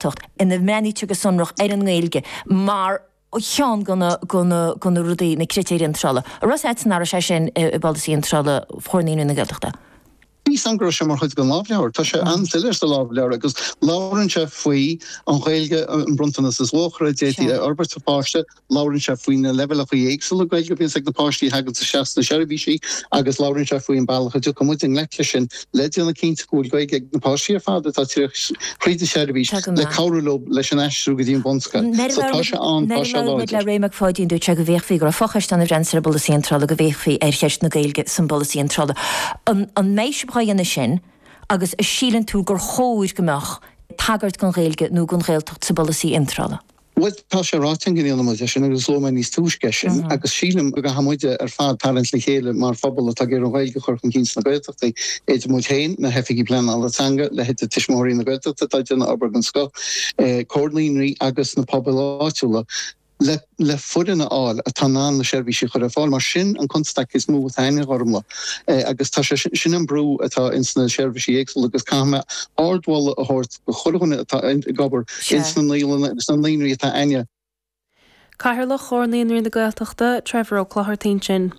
Gaeltacht ina mbreathnaítear go sonrach ar an nGaeilge mar cheann de na rudaí, na critéir iontrála a raibh siad san áireamh sin i bpolasaí iontrála Chomhar Naíonraí na Gaeltachta. Measaim go raibh sé mar chuid den lámhleabhar. Tá sé an-soiléir sa lámhleabhar agus labhrann sé faoi an Ghaeilge, an bronntanas is luachmhaire a d'fhéadfaí a fhorbairt sa pháiste, Labhrann sé faoi na leibhéalacha éagsúla Gaeilge a bhíonns ag na páistí a thaganns isteach sna seirbhísí agus labhrann sé faoi an bealach a dtiocfaidh muid i ngleic leis sin le déanamh cinnte go bhfuil Gaeilge ag na páistí ar fad atá ag tíocht tríd an seirbhís le cabhrú leo leis an aistriú go dtí an bhunscoil. So tá sé ann, tá sé láidir. Nuair a labhair muid le Ray Mac Pháidín dúirt sé go bhféachfaí go raibh fochoiste ann a bhreathnaíonns ar an bpolasaí iontrála go bhféachfaí ar cheist na Gaeilge san bpolasaí iontrála. An an mbeidh sibh dhá dhéanamh sin agus an síleann tú gur chóir go mbeadh tagairt don Ghaeilge nó don Ghaeltacht sa bpolasaí iontrála? Bhuel, tá sé ráite againn go ndéanfaidh muid é sin agus luaigh mé níos túisce é sin agus sílim go gcaithfidh muid ar fad tarraingt le chéile mar phobal atá ag iarraidh an Ghaeilge a chur chun cinn sna Gaeltachtaí, idir muid féin, na hoifigigh pleanála teanga, leithéide Tuismitheoirí na Gaeltachta atá ag déanamh obair den scoth, Comhar Naíonraí agus na pobail áitiúla le le foireann a fháil atá in ann na seirbhísí a chur ar fáil mar sin an constaic is mó atá ann, a Ghormfhlaith, agus tá sé sin an brú atá insna seirbhísí éagsúla agus caithfidh mé ardmholadh a thabhairt go chuile dhuine atá ag obair ins na naíolanna agus na naíonraí atá againn. Cathaoirleach Chomhar Naíonraí na Gaeltachta, Trevor Ó Clochartaigh ansin.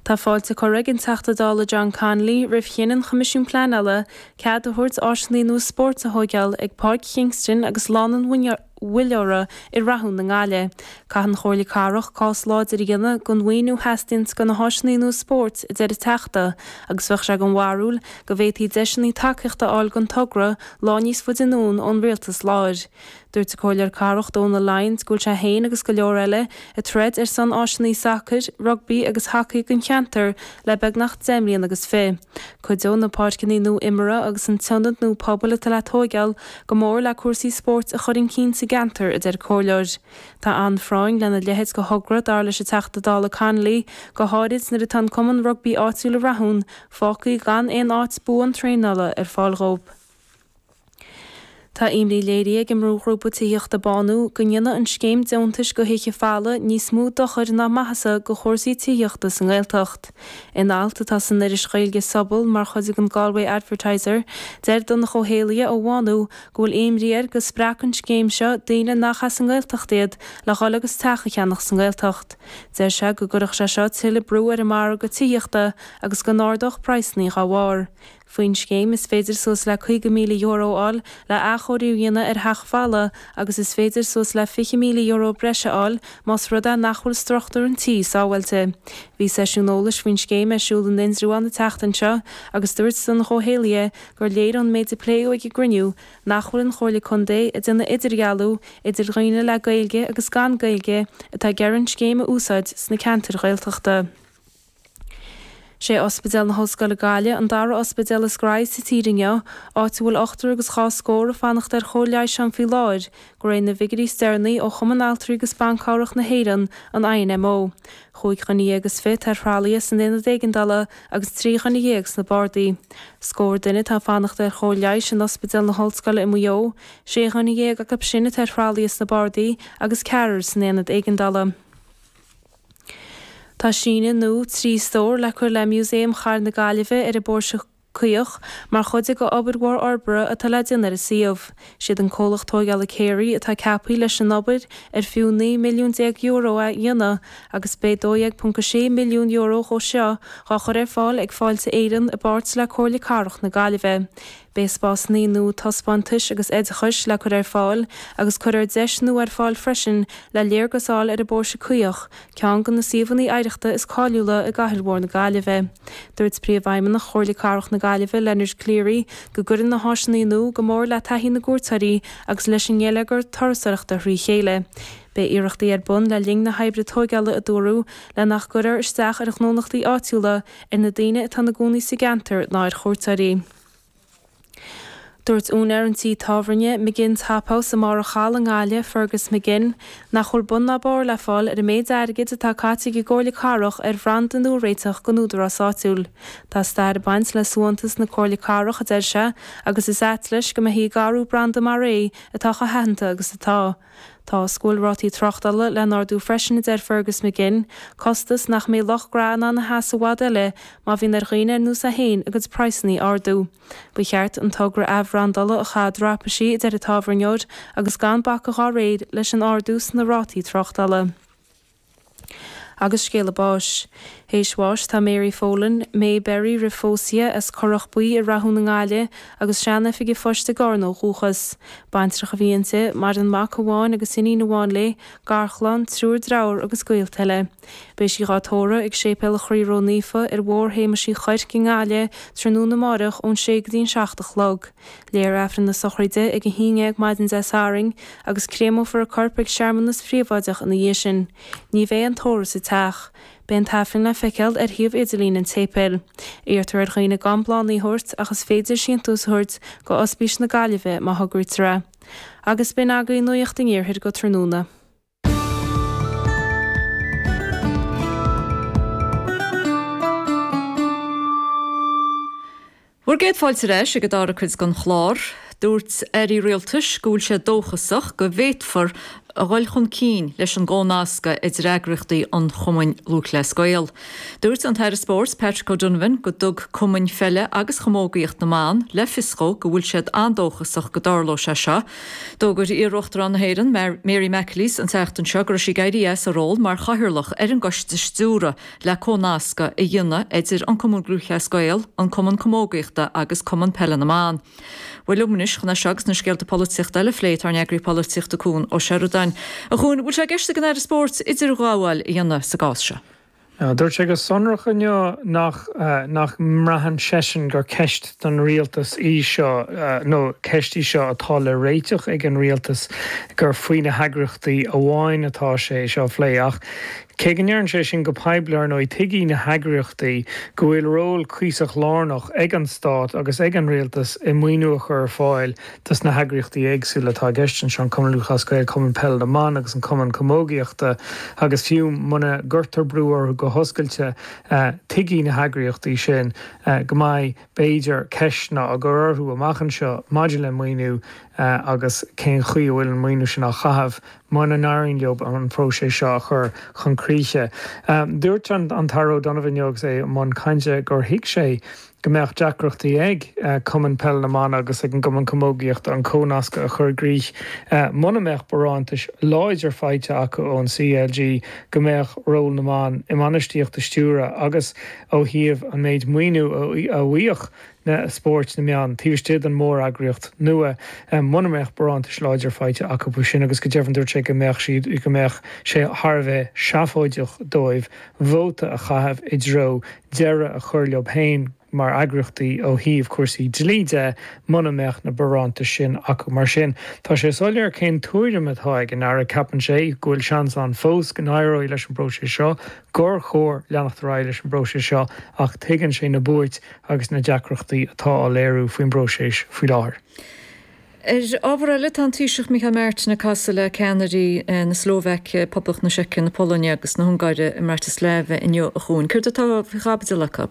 Tá fáilte curtha ag an Teachta Dála John Connolly roimh chinneadh an Choimisiúin Pleanála cead a thabhairt áiseannaí nua spóirt a thóigeáil ag Páirc Kingston agus Lána an Mhuilleora i Rathún i nGaillimh. Caithfidh an Chomhairle Cathrach cás láidir a dhéanamh don mhaoiniú a theastaíonns go na háiseannaí nua spóirt, a deir an Teachta, agus bheadh sé den bharúil go bhféadfaí deiseannaí tacaíochta a fháil don togra lá níos faide anonn ón Rialtas láir. Dúirt an Comhairleoir Cathrach Dónal Lyons go bhfuil sé féin agus go leor eile ag troid ar son áiseannaí sacair, rugbaí agus hacaí don cheantar le beagnach deich mbliain agus fiche. Cuideoidh na páirceannaí nua imeartha agus an t-ionad nua pobail atá le tóigeáil go mór le cúrsaí spóirt a chur chun cinn sa gceantar, a deir an comhairleoir. Tá an-phráinn lena leithéid de thogra, dar leis an Teachta Dála Connolly, go háirid nuair atá an cumann rugbaí áitiúil i Rathún fágtha gan aon áit buan traenála ar fáil dhóibh. Tá imní léirithe ag an mbrúghrúpa tithíochta Bánú go ndéanfaidh an scéim deontais go thithe folmha níos mó dochair ná maitheasa go chúrsaí tithíochta sa nGaeltacht. In alt atá san iris Ghaeilge Sobal mar chuid den Galway Advertiser, deir Donncha Ó hÉallaithe ó Bhánú go bhfuil imní air go spreagfadh an scéim seo daoine nach as an nGaeltacht iad le dhul agus teach a cheannach sa nGaeltacht. Deir sé go gcuirfeadh sé seo tuilleadh brú ar an margadh tithíochta agus go n-ardódh praghsanna dá bharr. Faoin scéim, is féidir suas le €50,000 a fháil le athchóiriú a dhéanamh ar theach folamh agus is féidir suas le €20,000 breise a fháil más rud é nach bhfuil struchtúr an tí sábháilte. Bhí seisiún eolais faoin scéim ar siúl in Indreabhán an tseachtain seo agus dúirt Donncha Ó hÉallaithe gur léir ón méid a pléadh ag an gcruinniú nach bhfuil an Chomhairle Contae ag déanamh idirdhealú idir daoine le Gaeilge agus gan Gaeilge atá ag iarraidh an scéim a úsáid sna ceantair Ghaeltachta. Sé Ospidéal na hOllscoile Gaile an dara ospidéal is gnóthaí sa tír inniu, áit a bhfuil ochtar agus dhá scór ag fanacht ar chóir leighis ann faoi láthair de réir na bhfigiúirí is deireanaí ó Chumann Altraí agus Ban Cabhrach na hÉireann, an INMO, chúig dhuine dhéag is fiche atá ar thralaithe san aonad éigeandála agus trí dhuine dhéag sna bardaí. Scór duine atá ag fanacht ar chóir leighis in Ospidéal na hOllscoile i Maigh Eo, sé dhuine dhéag acub sin atá ar thralaithe sna bardaí agus ceathrar san aonad éigeandála. Tá síneadh nua trí stór le cur le Músaem Chathair na Gaillimhe ar an bPóirse Caoch mar chuid de obair mhór fhorbartha atá le déanamh ar an suíomh. Siad an comhlacht tóigeála Carey atá ceapaithe leis an obair ar fiú €19 milliún a dhéanamh agus beidh €12.6 milliún dhe seo dhá chur ar fáil ag Fáilte Éireann i bpáirt le Comhairle Cathrach na Gaillimhe. Beidh spásannaí nua taispeántais agus oideachais le cur ar fáil agus cuirfear deis nua ar fáil freisin le léargas a fháil ar an bPóirse Caoch, ceann de na suíomhanna oidhreachta is cáiliúla i gcathair mhór na Gaillimhe. Dúirt Príomhfheidhmeannach Chomhairle Cathrach na Gaillimhe, Leonard Cleary, go gcuirfidh na háiseanna nua go mór le taithí na gcuairteoirí agus leis an ngeilleagar turasóireachta thrí chéile. Beidh iarrachtaí ar bun le linn na hoibre tóigeála, a dúradh, le nach gcuirfear isteach ar ghnólachtaí áitiúla, ar na daoine atá ina gcónaí sa gceantar ná ar chuairteoirí. Dúirt úinéir an tí tábhairne, McGinn's Hop House, i mBarr a' Chalaidh i nGaillimh, Fergus McGinn, nach bhfuil bun ná barr le fáil ar an méid airgid atá caite ag an gComhairle Cathrach ar bhranda nua a réiteach don údarás áitiúil. Tá stair ag baint le suaitheantas na Comhairle Cathrach, a deir sé, agus is ait leis go mbeifí ag athrú branda mar é atá chomh haitheanta agus atá. Tá fhios go bhfuil rátaí tráchtála le n-ardú freisin a deir Fergus McGinn, costas nach mbeidh lucht gnó in ann a sheasamh i bhfad eile má bhíonn ar dhaoine ar nós é féin a gcuid praghsannaí a ardú. Ba cheart an togra athbhrandála a chaitheamh i dtraipisí a deir an tábhairneoir agus gan bacadh dhá réir leis an ardú sna rátaí tráchtála. Agus scéala báis. Théis bháis tá Mary Folan, Mae Berry roimh phósadh, as Corrach Buí i Rathún i nGaillimh, agus sean-oifig a phoist i gCarna ó dhúchas. Baintreach a bhí inti, maireann mac amháin agus iníon amháin léi, garchlann, triúr deartháir agus gaolta eile. Beidh sí dhá tórradh ag Séipéal Chroí Ró-Naofa ar Bhóthar Shéamais Uí Chuirc i nGaillimh tráthnóna amáireach ón sé go dtí'n seacht a chlog. Léifear Aifreann na sochraide ag a haon déag maidin Dé Sathairn agus créamófar a corp ag searmanas phríobháideach ina dhiaidh sin. Ní bheidh aon tórramh sa teach. Beidh an tAifreann le feiceáil ar shuíomh idirlín an tséipéil. Iarrtar ar dhaoine gan bláthannaí a thabhairt ach is féidir síntiús a thabhairt do Ospís na Gaillimhe má thograítear é. Agus b'in agaibh nuacht an Iarthair go tráthnóna. Bhur gcéad fáilte ar ais ag an dara cuid den chlár. Dúirt aire rialtais go bhfuil sé dóchasach go bhféadfar a dhul chun cinn leis an gcomhnascadh idir eagraíochtaí an Chumainn Lúthchleas Gael. Dúirt an tAire Spóirt Patrick O'Donovan go dtug cumainn pheile agus chamógaíocht na mban le fios dhó go bhfuil siad an-dóchasach go dtarlóidh sé seo, D'fhógair iar-Uachtarán na hÉireann, Mary McAleese an tseachtain seo go raibh sí ag éirí as a ról mar chathaoirleach ar an gcoiste stiúrtha le comhnascadh a dhéanamh idir An Cumann Lúthchleas Gael, An Cumann Camógaíochta agus Cumann Peile na mBan. Bhuel liom anois chun é seo agus na scéalta polaitíochta eile a phlé tá ár n-eagraí polaitíochta Cuan Ó Seireadáin. A Chuain, bhfuil sé i gceist ag an Aire Spóirt idirghabháil a dhéanamh sa gcás seo? Dúirt sé go sonrach inniu nach nach mbraitheann seisean gur ceist don Rialtas í seo nó ceist í seo atá le réiteach ag an Rialtas, gur faoi na heagraíochtaí amháin atá sé é seo a phlé. Ach cé go ndeireann sé sin go poiblí, ar ndóigh, tuigfidh na heagraíochtaí go bhfuil ról cuíosach lárnach ag an Stát agus ag an Rialtas i maoiniú a chur ar fáil dos na heagraíochtaí éagsúla atá i gceist anseo, an Cumann Lúthchleas Gael, Cumann Peile na mBan agus an Cumann Camógaíochta, agus fiú muna gcuirtear brú orthu go hoscailte tuigfidh na heagraíochtaí sin go mbeidh, b'fhéidir, ceisteanna á gcur orthu amach anseo maidir le maoiniú agus cén chaoi a bhfuil an maoiniú sin á chaitheamh muna n-éiríonn leob an próiseas seo a chur chun críche. Dúirt an tAire O'Donovan inniu agus é i mbun cainte gur thuig sé, go mbeadh deacrachtaí ag Cumann Peile na mBan agus ag an gCumann Camógaíochta an comhnascadh a chur i gcrích muna mbeadh barántais láidir faighte acu ón CLG go mbeadh ról na mban i mbainistíocht i stiúradh agus ó thaobh an méid maoiniú a bhfaigheadh na spóirt na mban taobh istigh den mhóreagraíocht nua muna mbeadh barántais láidir faighte acu faoi sin agus go deimhin dúirt sé go mbeadh siad go mbeadh sé thar a bheith seafóideach dóibh vóta a chaitheamh i dtreo deireadh a chur leob fhéin mar eagraíochtaí ó thaobh cúrsaí dlí de muna mbeadh na barántais sin acu. Mar sin, tá sé soiléir cén tuairim atá ag an Aire, ceapann sé go bhfuil seans ann fós go n-éireoidh leis an bpróiseas seo, gur chóir leanacht ar aghaidh leis an bpróiseas seo ach tuigeann sé na buairt agus na deacrachtaí atá á léiriú faoin bpróiseas faoi láthair. Ar ábhar eile, tá an Taoiseach Micheál Martin ag casadh le ceannairí na Slóvaice, Poblacht na Seice, na Polainne agus na hUngáire i mBratislava inniu a Chuain. Céard atá faoi chaibidil acu?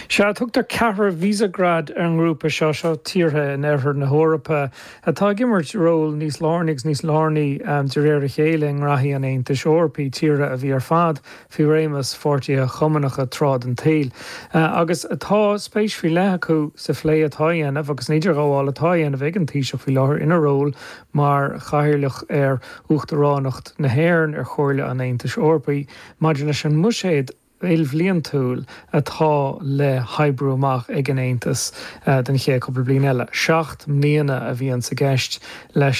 Sea, tugtar Ceathrar Visegrad ar an ngrúpa seo. Seo tíortha in oirthear na hEorpa atá ag imirt ról níos lárnaí agus níos lárnaí de réir a chéile i ngraithí an Aontais Eorpaigh, tíortha a bhí ar fad faoi réimeas pháirtithe chumannacha tráth den tsaol, agus tá spéis faoi leith acu sa phlé atá á dhéanamh agus san idirghabháil atá á dhéanamh ag an Taoiseach faoi láthair ina ról mar Chathaoirleach ar Uachtaránacht na hÉireann ar Chomhairle an Aontais Eorpaigh maidir leis an mbuiséad ilbhliantúil atá le hoibriú amach ag an Aontas don chéad chupla bliain eile. Seacht mbliana a bhíonns i gceist le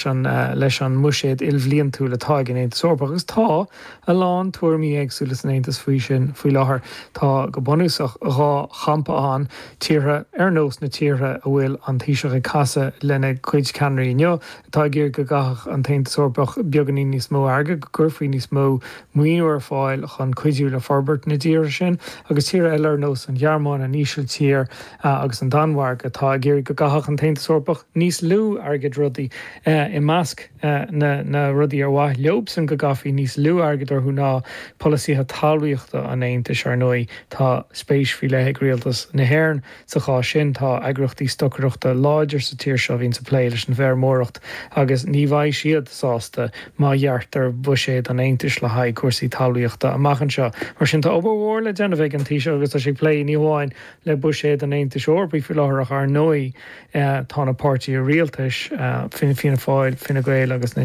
leis an mbuiséad ilbhliantúil atá ag an Aontas Eorpach agus tá, a lán tuairimí éagsúla san Aontas faoi sin faoi láthair. Tá, go bunúsach, dhá champa ann, tíortha ar nós na tíortha a bhfuil an Taoiseach ag casadh lena gcuid ceannairí inniu, atá ag iarraidh go gcaithfeadh an tAontas Eorpach beagáinín níos mó airgid, go gcuirfí níos mó maoiniú ar fáil chun cuidiú le forbairt na dtíortha sin, agus tíortha eile ar nós an Ghearmáin, an Ísiltír agus an Danmhairg atá ag iarraidh go gcaithfeadh an tAontas Eorpach níos lú airgid. Rudaí i measc na rudaí ar mhaith leobsan go gcaithfí níos lú airgid orthu ná polasaithe talmhaíochta an Aontais. Ar ndóigh tá spéis faoi leith ag rialtas na hÉireann sa chás sin. Tá eagraíochtaí stocaireachta láidir sa tír seo a bhíonns ag plé leis an bhfeirmeoireacht agus ní bheidh siad sásta má ghearrtar buiséad an Aontais le haghaidh cúrsaí talmhaíochta amach anseo. Mar sin tá obair mhór le déanamh ag an Taoiseach agus tá sé ag plé ní hamháin le buiséad an Aontais Eorpaigh faoi láthair ach, ar ndóigh, Tá na páirtithe rialtais, Fianna Fáil, Fine Gael agus na.